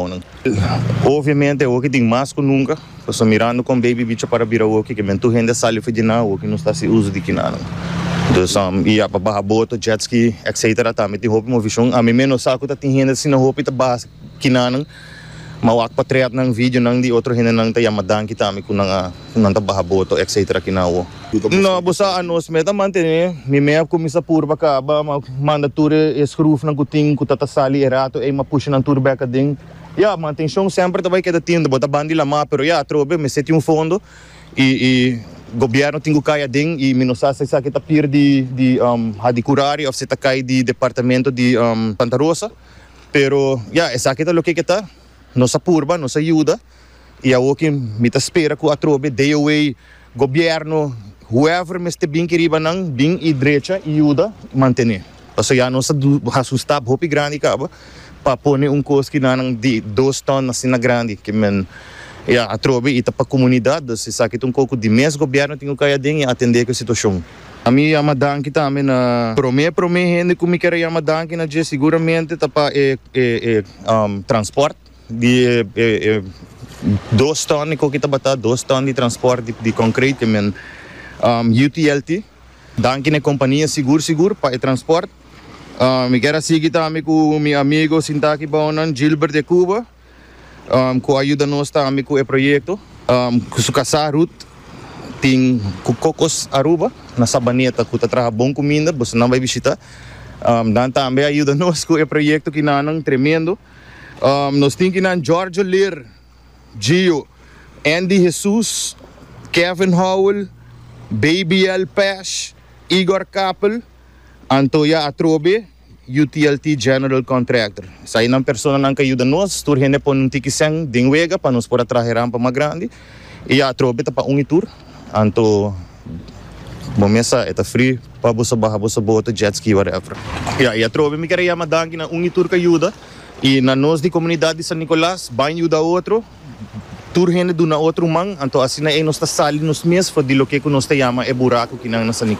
Honan. Obviamente awoki tin mas ku nunka, paso mirando kon baby bicha para bira awoki ke men tur hende a sali ofi di nan, awoki nos ta hasi uso di kinanan. Entonces am i a pa baha boto, jet ski, etcetera tambe tin hopi movishon. Ami mes no sa ku ta tin hende asina hopi ta baha kinanan, ma wak pa trèt nan, videonan di otro hende nan ta yama danki tambe ku nan a. Nan ta baha boto etc. Aki na awo. No bo sa anos me ta mantene mi me a cuminsa pur pa caba ma manda tur e scruf nan cu tin cu ta ta sali e rato ey ma pusha nan tur bek aden ya mantencion semper ta bay keda tin bo ta ban di lama pero ya atrobe mester tin un fondo y y gobierno tin cu cay aden y mi no sa si esaki ta pir di di hadi curari of si ta cay di departamento di Santa Rosa pero ya esaki ta loke ke ta nos a purba nos a yuda. y awo ke mi ta spera cu atrobe DOA gobierno whoever mester bin ki riba nan bin y drecha y yuda mantene pasobra ya nos ta haci un stap hopi grandi caba pa pone un cos ki nanan di dos ton asina grandi ke men ya atrobe y ta pa comunidad dus esaki ta un cos cu di mes gobierno tin cu cay aden y atende cu e situacion. A mi yama danki tambe na prome prome hende cu mi ker a yama danki na dje seguramente ta pa e e e transport. Di e dos ton di koki tabata dos ton di transport di konkreit e men UTLT danki na e kompania sigur sigur pa e transport. Mi kier a sigui tambe ku mi amigo sinta aki bao nan Gilbert de Cuba ku a yuda nos tambe ku e proyekto ku su kasá Ruth tin ku Cocos Aruba na Sabaneta ku ta traha bon kuminda boso nan bai bishita nan tambe a yuda nos ku e proyekto kinanan tremendo. Nos tin kinan Jorge Lir, Gio, Andy Jesus, Kevin Howell, Babyel Pash, Igor Kappel, Antoya Atrobe, UTLT General Contractor. Esai nan personanan ke a yuda nos. Tur hende pone un tiki sèn den wega pa nos por a traha e rampa mas grandi. I atrobe ta pa un i tur, anto bo mesa e ta fri pa boso baha boso boto, jet ski whatever. Ya i atrobe mi kere yama danki na un i tur ka yuda i na nos di komunidat di San Nicolas bain yuda otro, tur hende duna otro man, anto asina ei nos ta sali nos mes for di loke ku nos ta yama e buraku kinan na San Nicolas.